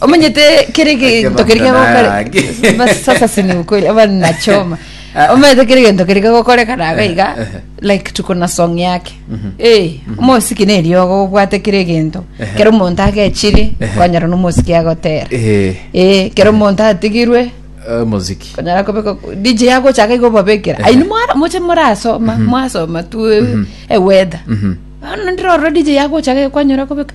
omanyete kere gento keri Akebanda gegokore nage. Bas- sasa siniukori aba nachoma omanyete kere gento keri gegokoreka naga iga like tuko na song yake eh omosiki na eriogo obwate kere gento kero omonto agechire konyora na omosiki agotera Eh, eh kero omonto atigirwe eh, muziki konyara kobeka dj agochaka igo obabekera aini mwara moche morasoma mwasoma tu eweda Mhm. ano ndirorora dj agochaka kwanyora kobeka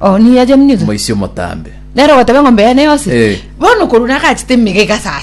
Oh, niye ajanunete. Moisia omotambe. Nere ogoteba eng'ombe yaye ne yonsi. Eh. Bono korwa nagachete emegega sasa.